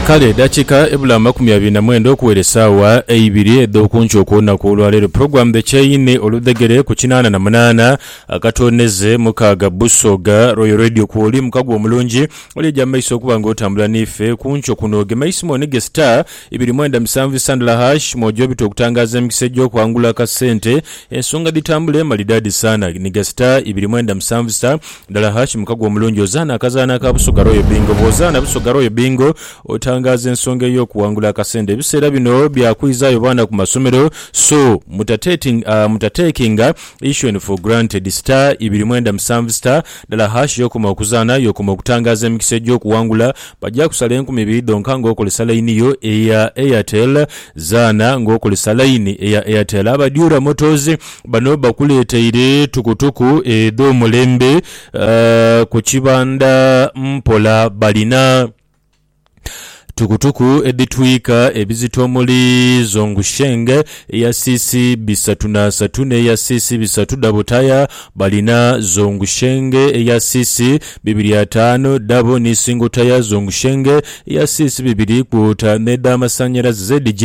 Kale edhakiika ebula amakumi abiri na mwenda okuwera esaawa eibiri edh'okunkyo okw'olunaku olwa leero, Program The Chaine oludhegere ku kinaana na munaana akatoonheze mukaaga Busoga Royal Radio kwoli muka gwo omulungi oli eja mu maiso okuba nga otambula n'ife kunkyo kuno. Gema eisimu onige star ibiri mwenda musanvu isa ndala hash mwojo obite okutangaaza emikisa egy'okwangula akasente ensonga dhitambule malidaadi saana. Niga star ibiri mwenda musanvu star. Dala ha kimuka gwe omulungi ozaana akazaanho aka Busoga Royal Bingo. Bwozaana Busoga Royal Bingo otangaaza ensonga ey'okuwangula akasente. Ebiseera bino bya kwizaayo baana ku masomero so mutatekinga issue'n for granted. Star ibiri mwenda musanvu star dala hash y'okoma okuzaana y'okoma okutangaaza emikisa egy'okuwangula. Bagya kusala enkumi ibiri dhonka nga okozesa layini yo eya Airtel. Zaana nga okozesa layini eya Airtel. Aba Dura Motors Bano bakuleteire tukutuku edh'omulembe ku kibanda mpola. Balina tukutuku edhitwika ebizito omuli Zhongsheng eya cc bisatu n'asatu n'eya cc bisatu dhabo taya. Balina Zhongsheng eya cc bibiri ataanu dhabo ni single taya, Zhongsheng eya cc bibiri kwota n'edhamasannyalaze ZJ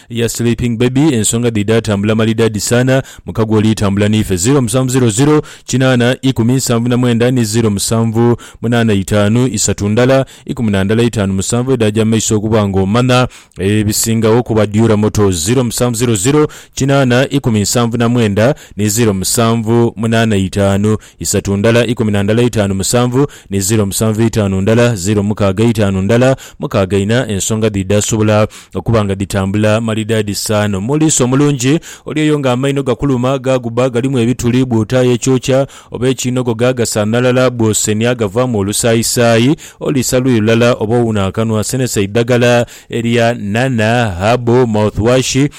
Ya sleeping baby ensonga dhi dha tambula malidadi sana muka gwe oli tambula nife ziro musanvu ziro ziro kinana ikumi nsanvu na mwenda ni ziro musanvu munana itanu isatu ndala ikumi na ndala itanu musanvu edhaja mumaiso okuba nga omana ebisingagho ku ba Dura Motors ziro musanvu ziro ziro kinana ikumi nsanvu na mwenda ni ziro musanvu munana itanu isatu ndala ikumi na ndala eitaanu musanvu ni ziro musanvu eitaanu ndala ziro mukaaga eitaanu ndala mukaaga ina ensonga dhi dhaasobola okuba nga dhitambula malidaadi saana omuliisa omulungi oli oyo nga amaino gakuluma gaaguba galimu ebituli bw'otaaya ekyokya oba ekiinogoga gasaanhalala bw'osenia gavaamu olusaayisaayi oliisa luyi lulala oba owuuna akanwa senesa eidhagala erya nana, herbal, mouthwash,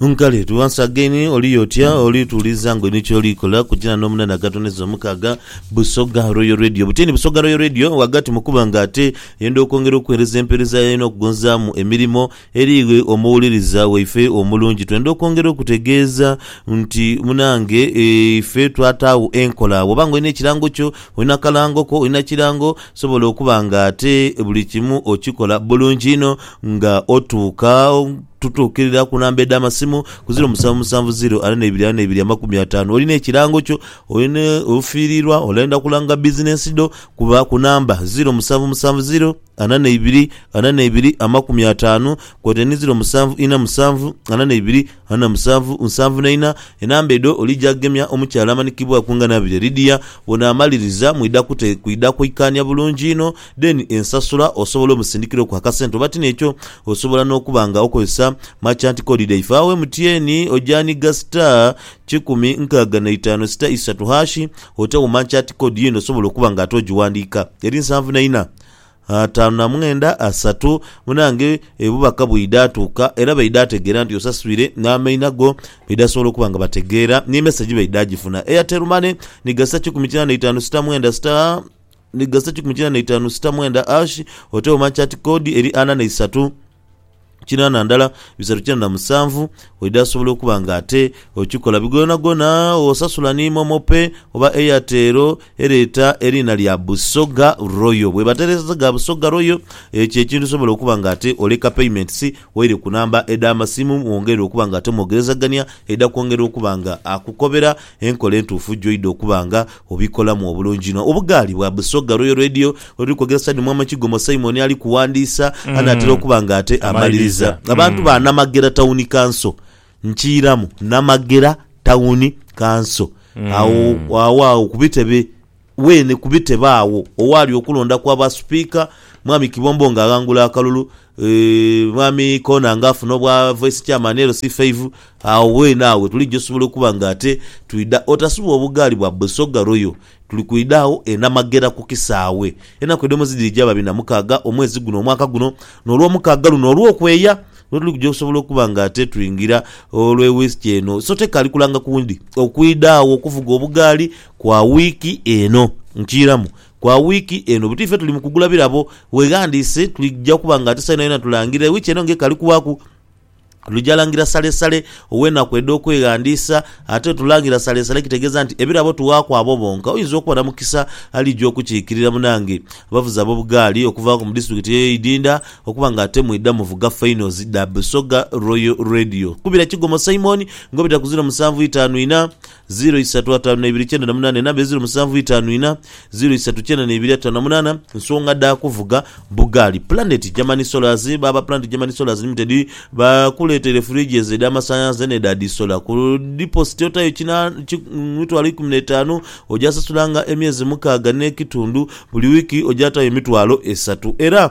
Nkale tu once again oli otya oli tuuliza ngo inho kyoli kola kujana no munana agatoneza omukaaga Busoga Royal Radio butini Busoga Royal Radio wagati mukuba nga ate yenda okwongera okuwereza empereza yayo no kugonzamu emirimo eri iwe omuwuliriza waife omulungi twenda okwongera okutegeeza nti munange ife twataagho enkola bwoba nga olina ekirango kyo olina akalango ko olina kirango sobola okuba nga ate buli kimu okikola bulungi inho nga otuuka Tutuukirira ku namba edh'amasimu ku ziro musanvu musanvu ziro ana n'eibiri ana n'eibiri amakumi ataanu. Olina ekirango kyo? Olina ofiiriirwa? Olenda kulanga bizinensi dho? Kuba ku namba ziro musanvu musanvu ziro ana n'eibiri ana n'eibiri amakumi ataanu kwotaire ni ziro musanvu ina musanvu ana n'eibiri ana musanvu nsanvu na ina. Enamba edho olija gemya omukyala amanikibwaaku nga Nabirye Lydia. Bw'onaamaliriza mwidha kwidha kwikaania bulungi inho. Then ensasula osobola omusindikira oku akasente oba ti nekyo osobola nokuba nga okozesa merchant code dhaife agho MTN ojanigha star kikumi nkaaga na itaanu sita isatu hash ote gho merchant code yene osobola okuba nga ate ogiwandika eri nsanvu na ina ataanu na mwenda asatu munange ebubaka bwidha atuuka era baidha ategeera nti osaswire namaina go baidha asobola okuba nga bategeera ni message baidha agifuna Airtel money ni gha sita kikumi kinaana na itaanu sita mwenda sita ni gasa kikumi kina na itaanu sita mwenda ashi, otewo manchati kodi eri ana na isatu kina na ndala bisatu kina na musanvu, oidha asobola okuba nga ate okikola bigonagona osasula ni momo pay oba airtel ereeta eriina lya busoga royal bweba tereeseza ga busoga royal ekyo ekintu osobola okuba nga ate oleka payments waire ku namba edha masimu mwongerere okuba nga ate mwogerezagania, aidha kwongera okuba nga akukobera. Enkola entuufu gy'oidha okuba nga obikolamu obulungi inho. Obugaali bwa Busoga Royal Radio oluli kwogera side Mwama Kigomo Simon ali kuwandiisa anaatera okuba nga ate amaliriza. Abantu ba Namagera Tawuni Kanso nkiiramu. Namagera Tawuni Kanso. Agho agho ku bitebe. Weene ku bitebe agho owaali okulonda kwa ba Sipiika, Mwami Kibombo nga aghangula akalulu, Mwami Koona nga afuna obwa Vice Chairman LC5, agho weene agho wetuliija osobola okuba nga ate twidha otasubwa obugaali bwa Busoga Royal. Tuli kwidha agho e Namagera ku kisaawe. Enaku edh'omwezi dhiri gya babiri na mukaaga omwezi guno omwaka guno, n'Olwomukaaga luno olw'okweya lwetuli kuja okusobola okuba nga ate twingira olw'e Wiiki eno. So tekaali kulanga kundi okwidha agho okuvuga obugaali. Kwa wiiki eno. Nkiiramu, kwa wiiki eno. Buti ife tuli mu kugula birabo. Weeghandiise, twidha kuba nga ate saino yona tulangirira. Wiiki eno ng'ekali kubaaku, twidha langira salesale ow'enaku edh'okweghandiisa. Ate tulangira salesale kitegeeza nti ebirabo tuwaaku abo bonka. Oyinza okuba na mukisa aliija okukiikirira munange. Abavuzi ab'obugaali okuvaaku mu disitulikiti eyo y'eidinda okuba nga ate mwidha muvuga fainozi dha Busoga Royal Radio. Kubira Kigomo Simon ng'obita ku ziro musanvu itaanu inha. Ziro isatu ataanu naibiri kyenda na munaana enamba eziro musanvu itaanu ina ziro isatu kyenda naibiri ataanu na munaana Nsonga dha kuvuga bugaali Planet Germany Solars Baaba Planet Germany Solars Limited bakuleeteire fridges edh'amasanhalaze n'edha dhisola. Ku dipositi otayo kina ki mitwalo ikumi n'etaanu ogyasasulanga emyezi mukaaga n'ekitundu. Buli wiiki ogyatayo emitwalo esatu era.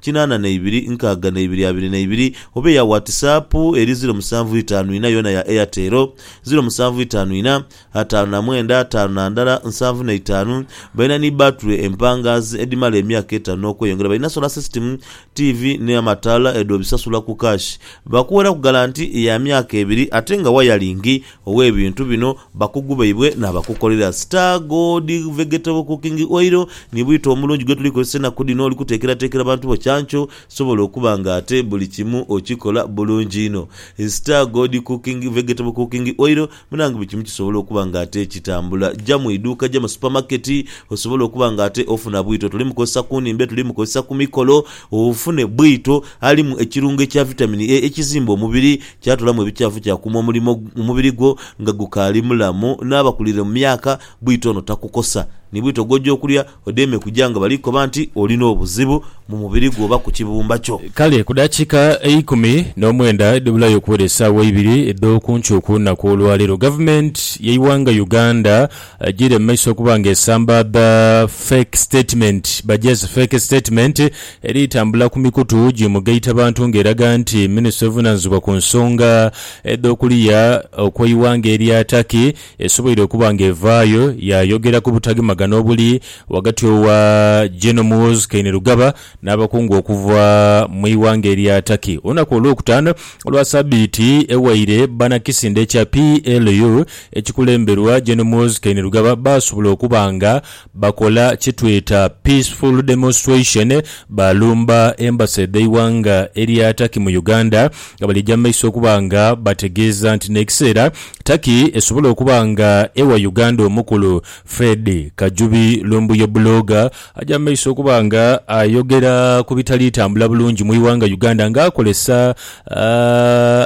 kinaana na ibiri nkaaga na ibiri abiri na ibiri oba eya watisaapu eri ziro musanvu itaanu ina yoona ya Airtel, ziro musanvu itaanu ina, ataanu na mwenda ataanu na ndala nsanvu na itaanu Balina ni bbaatule empangaazi edhimala emyaka etaanu n'okweyongera Balina sola sisitimu, tiivi ni amataala edhobisasula ku kaashi Baakuweraku galanti ya myaka ebiri ate nga wayalingi ow'ebintu bino bakugu baibwe n'abakukolera. Star Gold Vegetable Cooking Oil ni bwito omulungi gwe tuli kozesa enaku dhino oli kuteekerateekera bantu bo kyankyo sobola okuba nga ate buli kimu okikola bulungi inho. Star Gold Cooking Vegetable Cooking Oil munange buli kimu kisobola okuba nga ate kitambula. Ja mu iduuka, ja mu supermarket osobole okuba nga ate ofuna bwito. Tuli mukozesa ku nhimbe, tuli mukozesa ku mikolo ofune bwito alimu ekirungo ekya Vitamin A ekizimba omubiri. Kyatulamu ebikyafu kyakuuma omulimo mu mubiri gwo nga gukaali mulamu, n'abakuliire mu myaka bwito ono takukosa. Ni bwito gw'oja okulya odeeme kuja nga bali kukoba nti olina obuzibu mu mubiri gwo oba ku kibumba kyo. Kale ku dakiika eikumi n'omwenda edhibulayo okuwera esaawa eibiri edh'okuncuuka olunaku olwaleero, Gavumenti y'eighanga Uganda Agiire mu maiso okuba nga esambaadha fake statement by just fake statement eri tambula ku mikutu gi mugaita bantu nga eraga nti ministry evunanizibwa ku nsonga edho kuliya okweighanga erya Turkey esoboire okuba nga evaayo ya yogera ku butagemagana obuli ghagati owa General Muhoozi Kainerugaba n'abakungu okuva mu ighanga erya Turkey olunaku olwokutaano olwa sabiiti ewaire banakisinde ekya PLU ekikulemberwa Gen Muhoozi Kainerugaba baasobola okuba nga bakola kyetweta peaceful demonstration baalumba embassy dheighanga erya Turkey mu Uganda nga balija mumaiso okuba nga bategeeza nti nekiseera Turkey esobola okuba nga ewa Uganda omukulu Fred Kajubi Lumbuye Blogger Aja mu maiso okuba nga ayogera ku bitali tambula bulungi mu ighanga Uganda nga akolesa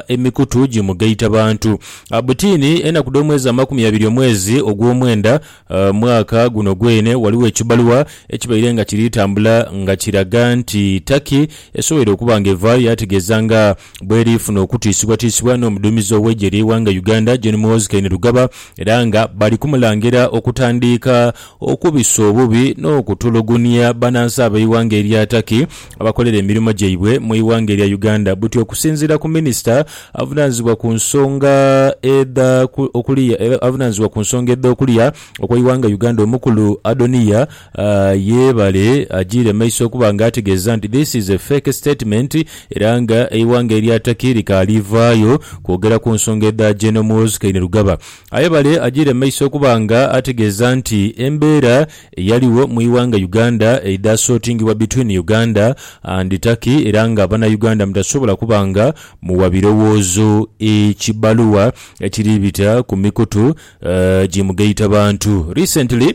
emikutu gi mugaita bantu. Butini, enaku dho mwezi amakumi abiri omwezi ogwomwenda mwaka guno gweene ghaligho ekibaluwa ekibaire nga kiri tambula nga kiraga nti Turkey esoboire okuba nga eva yategeza nga bweri funa okutiisibwatiisibwa n'omuduumizi ow'eigye lyeighanga Uganda Gen Muhoozi Kainerugaba era nga bali kumulangira okutandiika okubisa obubi n'okutulugunia banansi ab'eighanga erya Turkey abakolera emirimo gyaibwe mu ighanga erya Uganda. Buti okusinziira ku minisita avunanizibwa ku nsonga edha okulia era avunanizibwa ku nsonga edha okulia okweighanga Uganda omukulu Adoniya Yebale ajiire maiso okuba nga ategeeza nti this is a fake statement era nga eighanga erya Turkey likaali vaayo kwogera ku nsonga edha General Muhoozi Kainerugaba. Aye bale ajiire maiso okuba nga ategeeza nti embeera eyaligho mu ighanga Uganda eidha sortingibwa between Uganda and Turkey era nga bana Uganda mutasobola kuba nga muwa birowoozo ekibaluwa ekiri bita ku mikutu ji mugaitabantu. Recently.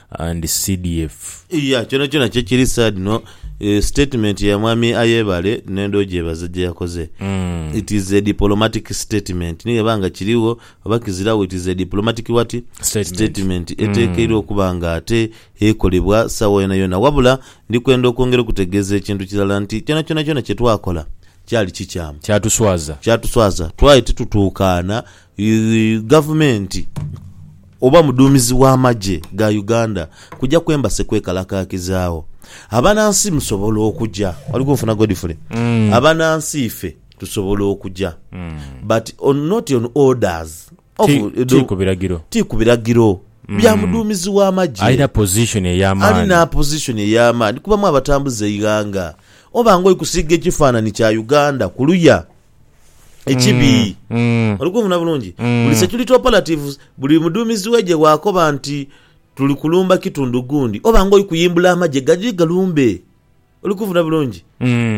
and CDF. Iya kyona kyona kyekiri sad no statement ya mwami Ayebare nenda ogyebaza gyeyakoze it is a dipolomatic statement ni gheba nga kirigho oba kiziragho it is a dipolomatic what? Statement. statement etekeirwa okuba nga ate ekolebwa sawa yona yona wabula ndi kwenda okwongera okutegeza ekintu kirala nti kyona kyona kyona kyetwakola kyali kikyamu Kyatuswaza. kyatuswaza twali titutukaana Gavumenti oba mudhuumizi w'amagye ga Uganda kuja ku Embassy kwekalakaakizaawo. Abanansi musobola okuja. Oli kunfuna Godfrey? Abanansi ife tusobola okuja but on not on orders of Ti, ti the- ku biragiro. ti ku biragiro bya mudhuumizi w'amagye Alina position ey'amaani. alina position ey'amaani kubamu abatambuza eighanga oba nga oli kusiiga ekifaananyi kya Uganda kuluya ekibi. Oli kunfuna bulungi? Buli security operatives, buli mudhuumizi w'eigye bw'akoba nti tuli kulumba kitundu gundi, oba ng'oli kuyimbula amagye gaje galumbe. Oli kunfuna bulungi?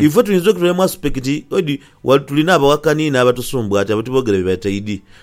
Ife tuyinza okuba tuli mu aspect oti tulina abawakani n'abatusumbwati abo tiboogera bye bataidi.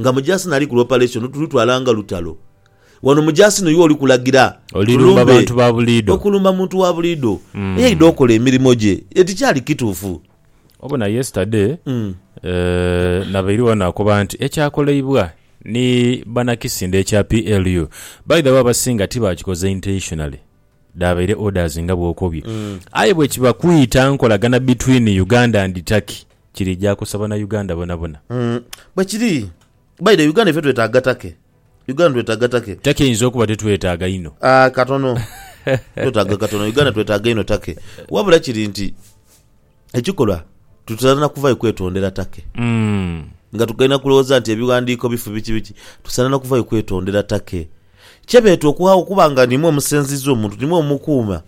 nga mujaasi nali ku lopareshoni tulutwala nga lutalo. Wano mujaasi n'oyo oli kulagira Olirumba tulumbe. bantu ba buliidho. Okulumba muntu wa buliidho eyaidha okola emirimo gye e tikyali kituufu. Obona yesterday eh, nabaire wano akoba nti ekyakoleibwa ni banakisinde ekya PLU by the way abasinga tibakikoze intentionally dhabaire orders nga bwokobye aye bwekiba kwita nkolagana between Uganda and Turkey kirija kosa bana Uganda bonabona. Bwe kiri. By the Uganda ife twetaaga take. Uganda twetaaga take. Take eyinza okuba tetwetaaga inho. Aah katono. Twetaaga katono. Uganda twetaaga inho take. Wabula kiri nti ekikolwa tutera na kuvayo kwetondera take. Nga tugaina kulowooza nti ebighandiiko bifu biki biki. Tusaana na kuvayo kwetondera take. Kye beeta okuhagha okuba nga nimwo omusenziiza omuntu, nimwo omukuuma.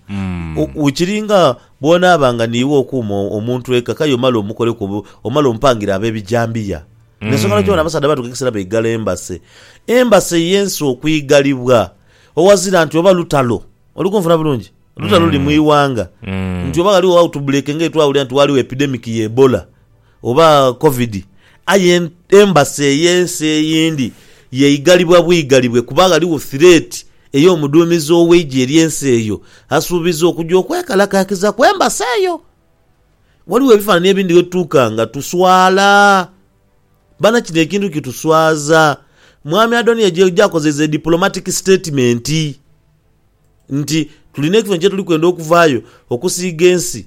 O- Kiri nga bw'onaaba nga niiwe okuuma o- omuntu eka, k'aye omale omukoleku obu, omale omupangire ab'ebijambiya. N'ensonga lwaki bano abasaadha baatuuka ekiseera baigala embase. Embase y'ensi okwighalibwa, owazira nti oba lutalo. Oli kunfuna bulungi? Lutalo luli mu ighanga, nti oba ghaligho autbreak ng'etwawulira nti waaliwo epidemic ya Ebola, oba Covid, aye Embassy ey'ensi eyindi yeigalibwa bwigalibwe kuba ghaligho thireeti ey'omuduumizi ow'eigye ery'ensi eyo asuubiza okuja okwekalakaakiza ku Embassy eyo. Ghaligho ebifaanani ebindi ghe tutuuka nga tuswala. Bana kino ekintu kituswaza. Mwami Adoniya gy'akozeiza e diplomatic statement nti, Tulina ekifo kye tuli kwenda okuvaayo okusiiga ensi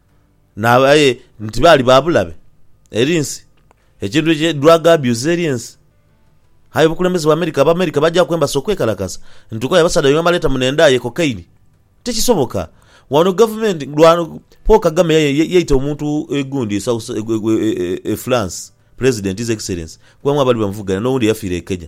aye nti baali ba bulabe eri ensi, ekintu ki drug abuse eri ensi. Aye obukulembeze bwa America, Abamerika bagyaku embasi okwekalakasa nti okoya abasaadha baibwe abaleeta muno endhaa ye cocaine. Tikisoboka. Wano gavumenti lwa Paul Kagame yaye ye- yaita omuntu e gundi e South- e- e- e- e France, President, His Excellency, kubamu abaali bamuvuganya n'owundi eyafiira e Kenya.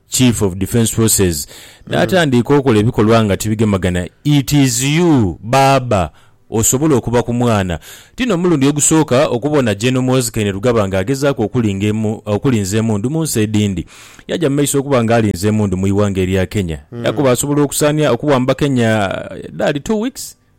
Chief of Defence Forces natandiika okola ebikolwa nga tibigemagana it is you baaba osobola okuba ku mwana. Tino mulundi ogusooka okubona General Muhoozi Kainerugaba nga agezaaku okulinga okulinza emundu mu nsi edindi. Yaja mu maiso okuba nga alinza emundu mu iwanga erya Kenya yakoba asobola okusaania okuwamba Kenya edhali two weeks.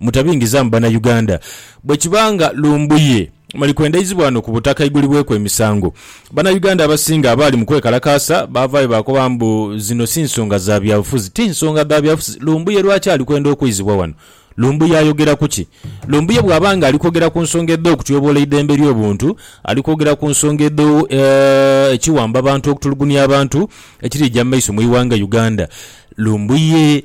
Mutabingizaamu Bannayuganda. Bwekiba nga Lumbuye mali kwendaizibwa ghano ku butaka aigulibweku emisango, Bannayuganda abasinga abaali mu kwekalakaasa baavaayo baakoba mbu zino si nsonga za byabufuzi. Ti nsonga dha byabufuzi. Lumbuye lwaki ali kwenda okwizibwa ghano? Lumbuye ayogera ku ki? Lumbuye bw'aba nga ali kwogera ku nsonga edh'okutyoboola eidembe ly'obuntu, ali kwogera ku nsonga edho ekiwamba bantu okutulugunia abantu ekiriija mu maiso mu ighanga Uganda. Lumbuye.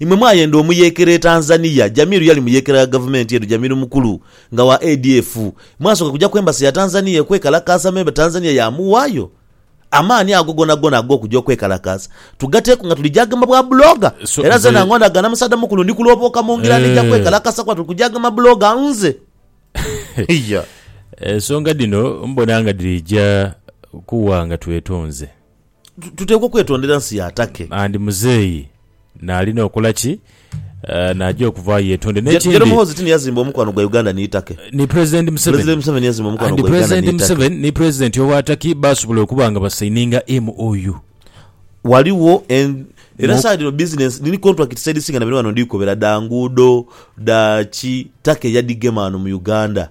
Imwe mwayenda omuyeekera e Tanzania, Jamiru yali muyeekera gha gavumenti eno, Jamiru mukulu nga wa ADF. Mwasooka kuja ku Embassy ya Tanzania okwekalakaasa me Tanzania yaamuwaayo? Amaani ago gonagona ag'okuja okwekalakaasa tugateeku nga tuli gyagema bwa blogger? Era nze nange onagana musaadha mukulu ndi kulobooka mu ngira nija kwekalakaasa kuba tuli ku gyagema blogger nze. Iya. Ensonga dhino mbona nga dhija kuwa nga twetonze. Tuteekwa okwetondera nsi ya Turkey. And muzeeyi naalina okola ki? Naaja okuvaayo yetonde. Gen Muhoozi ti ni yazimba omukwano gwa Uganda ni Turkey? Ni President Museveni. President Museveni yazimba omukwano gwa Uganda ni Turkey. And President Museveni ni President owa Turkey baasobola okuba nga basaininga MOU. Ghaligho en. Era saagha dhino business dhiri contracts edhisinga na bino ghano ndhi kukobera dha nguudo, dha ki, Turkey yadhigema ghano mu Uganda.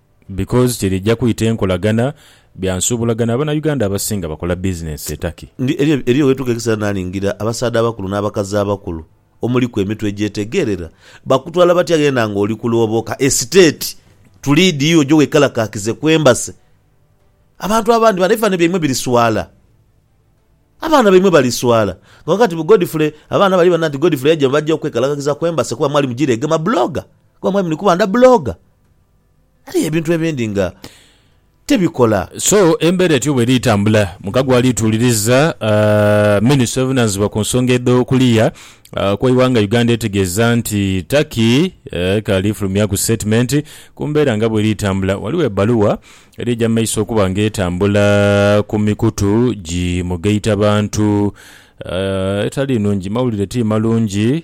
Because kyerija kwita enkolagana bya nsuubulagana abana Uganda abasinga bakola business e Turkey. Ndi eriyo eriyo wetuuka ekiseera nalingira abasaadha abakulu n'abakazi abakulu omuliku emitwe egyetegeerera bakutwala batya ghenda nga oli kulooboka esiteeti tuliidi yo oje wekalakaakize ku Embassy. Abantu abandi bano ebifanhanhi byaimwe biri swala. Abaana baimwe bali swala. Nga wagamba nti Godfrey abaana bali bana nti Godfrey yaija baja okwekalakakiza ku Embassy kuba mwali mujiregema blogger kuba mwali muli kuba nda blogger. Aye ebintu ebindi nga tebikola. So embeera etyo bweri tambula, mukago ali tuuliriza minisita obuvunanizibwa ku nsonga edho kuliya kweighanga Uganda etegeeza nti Turkey ekaali fulumyaku sitetimenti ku mbeera nga bweri tambula. Ghaligho ebbaluwa eri eja mumaiso okuba nga etambula ku mikutu gi mugaitabantu etali nungi. Mawulire ti malungi.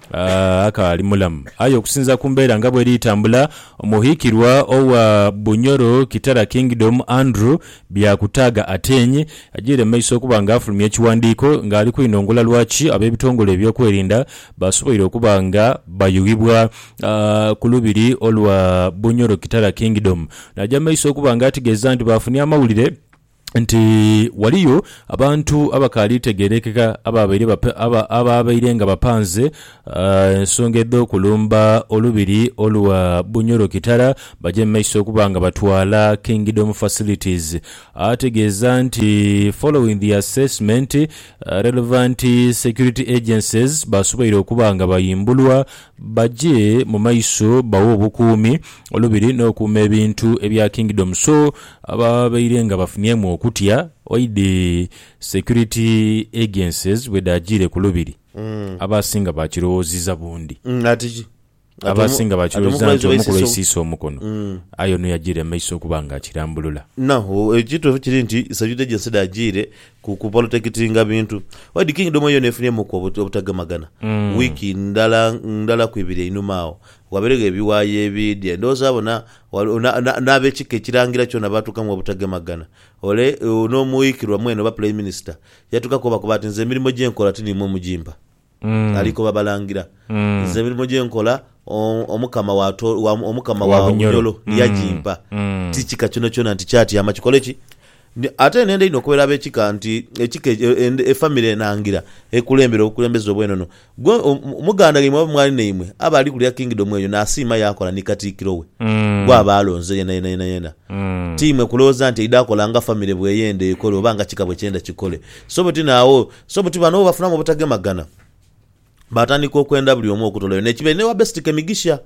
akaali mulamu. Aye okusinza ku mbeera nga bweri tambula, omuhikirwa owa Bunyoro Kitara Kingdom Andrew Byakutaaga Ateny ajeire mumaiso okuba nga afulumya ekiwandiiko nga ali kwinongola lwaki abebitongole ebyokwerinda basoboire okuba nga bayughibwa ku lubiri olwa Bunyoro Kitara Kingdom. Naja mumaiso okuba nga ategeeza nti bafunye amawulire nti ghaliyo abantu abakaali tegerekeka abaabaire nga bapanze ensonga edh'okulumba olubiri olwa Bunyoro-Kitara baje mu maiso okuba nga batwala Kingdom Facilities ategeeza nti following the assessment relevant security agencies baasoboire okuba nga bayimbulwa baje mu maiso bawe obukuumi olubiri n'okuuma ebintu ebya Kingdom so Ababaire nga bafunyemu okutya oidhi security agencies bwedhaajiire ku Lubiri, abaasinga baakirowooziza bundi. Ati ki? Abaasinga baakirowooziza nti omu ku lwaisiisa omukono, aye ono yajiire mu maiso okuba nga akirambulula. Now, ekituufu kiri nti security agency dhaajiire ku kuprotectinga bintu. Oidhi Kingdom yoona efunyemuuku obutagemagana wiiki ndala ndala ku ibiri einhuma agho. Wabeeregho ebiwayi ebiidya, ndowooza bona Ghaligho n'ab'ekika ekirangira kyona baatuukamu obutagemagana. Ole n'omuwughikirwa mwene oba puleiminisita yatuukaku obakoba ati, Nze emirimo gye nkola ti niimwe mugimpa. Ali koba balangira, Nze emirimo gye nkola Omukama wa Omukama wa Bunyoro yagimpa. Ti kika kyonakyona nti kyatyama kikole ki? Ate nenda inho okobera ab'ekika nti ekika e famire enangira ekulembera obukulembeze obw'enono. Gwe muganda ghaimwe oba mwali naimwe aba ali kulya Kingdom eyo n'asiima yaakola ni Katiikiro we gw'aba alonze yenayenayena, tiimwe kulowooza nti aidha kola nga famire bw'eyenda ekole oba nga kika bwe kyenda kikole. So buti n'agho, so buti bano bafunamu obutagemagana. baatandika okwenda buli omu okutolayo n'ekibe n'ewa Besiti Kemigisha.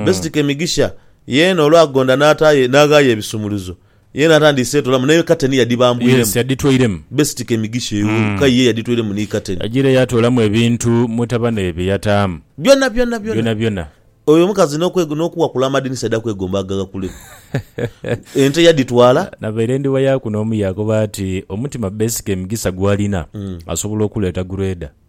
Besiti Kemigisha yeena olwagonda n'ataayo n'aghaayo ebisumuluzo, yeena atandiise etolamu n'eyo kateni Yes, yadhibambwiremu. yadhitwairemu. Besiti Kemigisha eyo ka ye yadhitwairemu ni kateni. Yagiire yaatoolamu ebintu mutabane bye yataamu. Byona byona byona. Byonabyona. Oyo omukazi n'okwe n'okuwakula amadinisa aidha kwegomba agaghakuleku. Ente yadhitwala. Nabaire ndi wayaaku n'omu yaakoba ati, Omutima Bessi Kemigisa gw'alina asobola okuleeta gureda.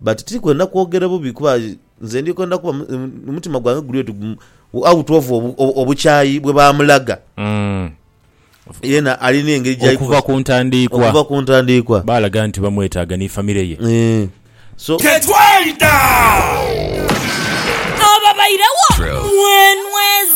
But tiri kwenda kwogera bubi kuba nze ndi kwenda kuba omutima gwange guli oti out of obukyayi bwe baamulaga. Yena ali n'engeri gyali kuba. Okuva ku ntandiikwa. Okuva ku ntandiikwa. Baalaga nti bamwetaaga ni famire ye. So. Tetwayita! Ababairegho mwenweza.